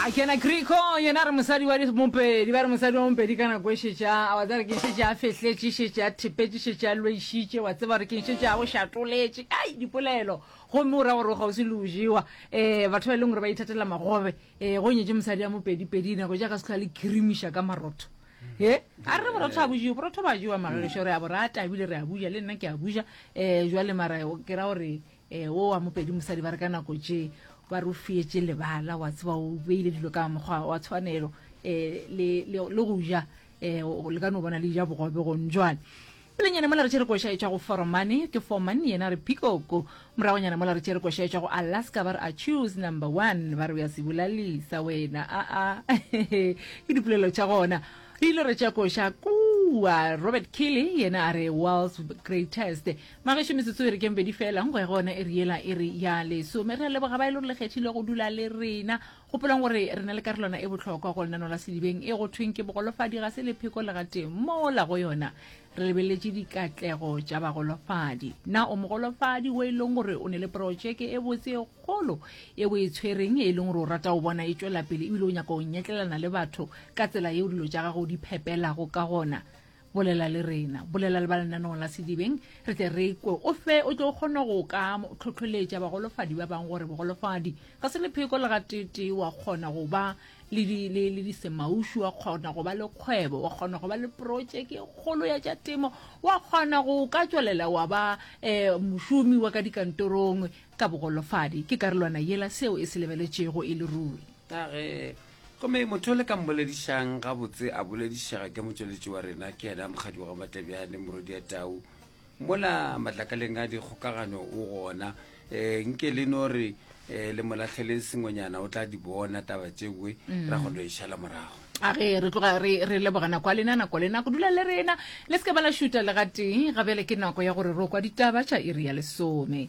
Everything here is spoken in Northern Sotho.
a kena kriko yena re mosadi wa mopedi ba re mosadi wa mopedi ka nako e šetša a wa tseba re ke šetše a fehletše šetše a thepetše šetše a lwešitše wa tseba re ke šetše a go šatoletše ai dipolelo gomme o ra gore o kgauswi le o jewa um batho ba e leng gore ba ithatela magobe um go nyetše mosadi ya mopedipedi nako jaaka se tlhoa le kirimiša ka marotho e a re borotho a bojewe borotho ba jewa magagešo re a bo rata ebile re a buja le nna ke a buja um jwale mara ke ra gore E, wo wa mopedi mosadi ba re ka nako tše ba re o fietše lebala wa tseba o beile dilo ka mokgwa wa tshwanelo um le go ja um le ka no bona le ja bogobe gong jwale pelenyana mola re tšere koša e tšwa go foromane ke forman yena re pikoko moragonyana mola re tšere koša e tšwa go alaska ba re a choose number one ba re o ya se bolalisa wena aa ke dipolelo tša gona re ile re tša koša kua robert kille yena a re world's greatest Magešo metsotso e re keng pedi fela nko ya gona e re yela e re ya lesome re a leboga ba e le gore le kgethile go dula le rena gopolong gore re na le karolwana e bohlokwa go lenano la sedibeng e go thweng ke bogolofadi ga se lepheko le gateng mola go yona re lebeletse dikatlego tša bagolofadi na o mogolofadi o e leng gore o ne le porotšeke e botse e kgolo e o e tshwereng e leng gore o rata o bona e tšwela pele ebile o nyaka o nyetlelana le batho ka tsela yeo dilo tša gago di phepelago ka gona Bolela le rena, bolela le ba lenaneong la Sedibeng, re tle re kwe o fe o tlo kgona go ka tlhotlholetša bagolofadi ba bang gore bogolofadi ga se lepheko le gateetee, wa kgona go ba le disemaušu, wa kgona go ba le kgwebo, wa kgona go ba le protšeke e kgolo ya tša temo, wa kgona go ka tšwelela wa ba um mošomi wa ka dikantorong ka bogolofadi. Ke karolwana yela seo e se lebeletšego e le ruri. Ka ge Gomme motho o le ka mboledišang gabotse a boledišega ke motšweletši wa rena, ke yena mokgadi wa Gamatlebjane, Morodia Tau. Mola matlakaleng a dikgokagano o gona. Eh, nke le no re eh, le molahleleng sengwenyana o tla di bona taba tšewe mm. ra go no e šala morago a re re tloga re re leboga nako a lena nako lena go dula le rena le se ke ba la šuta le gatee ga bjale ke nako ya gore ro kwa ditaba tša iri ya lesome